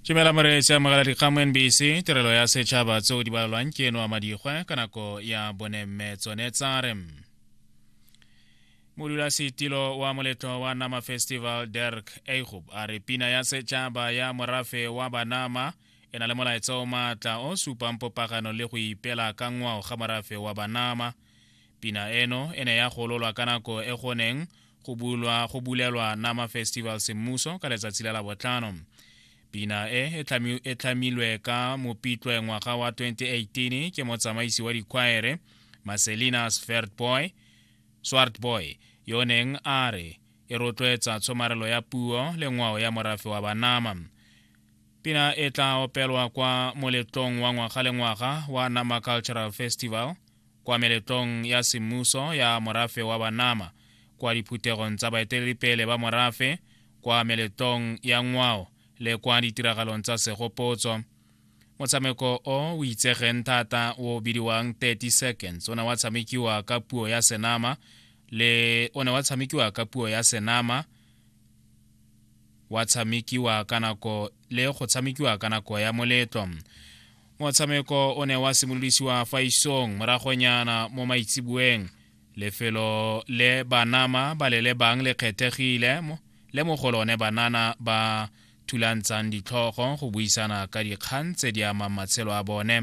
Tumela Moreetsi amogela dikgang mo NBC tirelo ya setšhaba tseo di balelwang ke eno a madigwe ka nako ya bone mme tsone tsare modulasetilo wa moletlo wa nama festival derk eigob a re pina ya setšhaba ya morafe wa banama e na le molaetsa o maatla o supang popagano le go ipela ka ngwao ga morafe wa banama Pina eno e ne ya gololwa ka nako e go neng go bulwa go bulelwa Nama Festival semmuso ka letsatsi la labotlhano. Pina e e tlhamilwe ka mopitlwe ngwaga wa 2018 ke motsamaisi wa dikwaere Marcelina Swartboy Swartboy yo o neng a re e rotloetsa tshomarelo ya puo le ngwao ya morafe wa Banama. Pina e tla opelwa kwa moletlong wa ngwaga le ngwaga wa Nama Cultural Festival kwa meletlong ya semmuso ya morafe wa Banama, kwa diphuthegong tsa baeteledipele ba morafe, kwa meletlong ya ngwao le kwa ditiragalong tsa segopotso. Motshameko o o itsegeng thata o bidiwang 30 seconds o ne wa tshamekiwa ka puo ya Senama le o ne wa tshamekiwa ka puo ya Senama wa tshamekiwa ka nako le go tshamekiwa ka nako ya moletlo motshameko o ne wa simolodisiwa fa isong moragonyana mo maitseboeng lefelo le banama ba le lebang le kgethegile le mo go lone banana ba thulantshang ditlhogo go buisana ka dikgang tse di amang matshelo a bone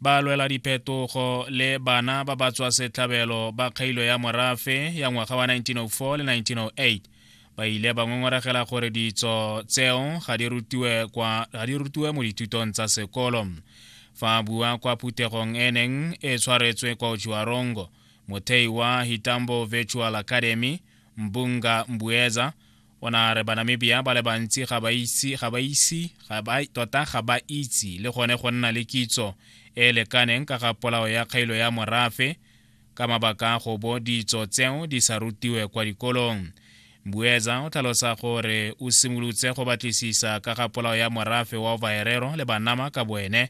ba lwela diphetogo le bana ba ba tswa setlhabelo ba kgailo ya morafe ya ngwaga wa 1904 le 1908 ba ile ba ngongoragela gore ditso tseo ga di rutiwe mo dithutong tsa sekolo fa bua kwa phuthegong e neng e tshwaretswe kwa ojuarongo mothei wa hitambo virtual academy mbunga mbueza o ne a re banamibia ba le bantsi ga ba itse ga ba ise ga ba tota ga ba itse le gone go nna le kitso e e lekaneng ka ga polao ya kgailo ya morafe ka mabaka a go bo ditso tseo di sa rutiwe kwa dikolong mbuetsa o tlhalosa gore o simolotse go batlisisa ka ga polao ya morafe wa vaerero le banama ka boene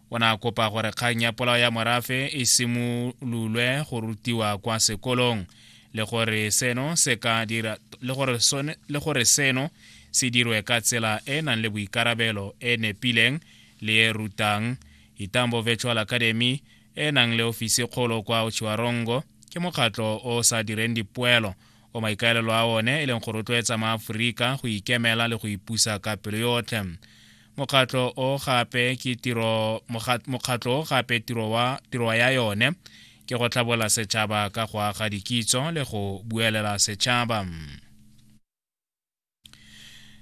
o ne a kopa gore kgang ya polao ya morafe e simololwe go rutiwa kwa sekolong le gore seno se ka dira le gore sone le gore seno se dirwe ka tsela e e nang le boikarabelo e nepileng le e rutang itambo virtual academy e e nang le ofisi kgolo kwa ochiwarongo ke mokgatlho o sa direng dipoelo o maikaelelo a one e leng go rotloetsa maaforika go ikemela le go ipusa ka pelo yotlhe mokgatlo o gape ke tiro mokgatlo o gape tiro wa tiro ya yone ke go tlhabola setšhaba ka go aga dikitso le go buelela setšhaba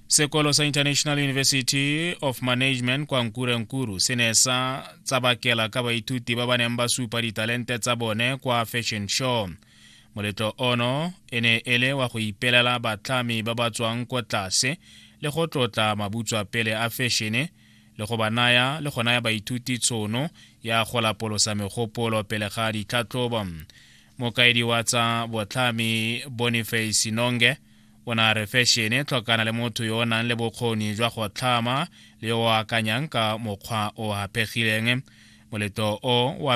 sekolo sa international university of management kwa nkurenkuru se ne sa tsabakela ka baithuti ba ba neng ba supa ditalente tsa bone kwa fashion show Moletlo ono e ne e le wa go ipelela batlhami ba ba tswang ko tlase le go tlotla mabutswa pele a fešene le go ba naya le go naya baithuti tshono ya go lapolosa megopolo pele ga ditlhatlhobo. Mokaedi wa tsa botlhami Boniface Nonge o ne a re fešene tlhokana le motho yo o nang le bokgoni jwa go tlhama le yo o akanyang ka mokgwa o hapegileng. Moletlo o wa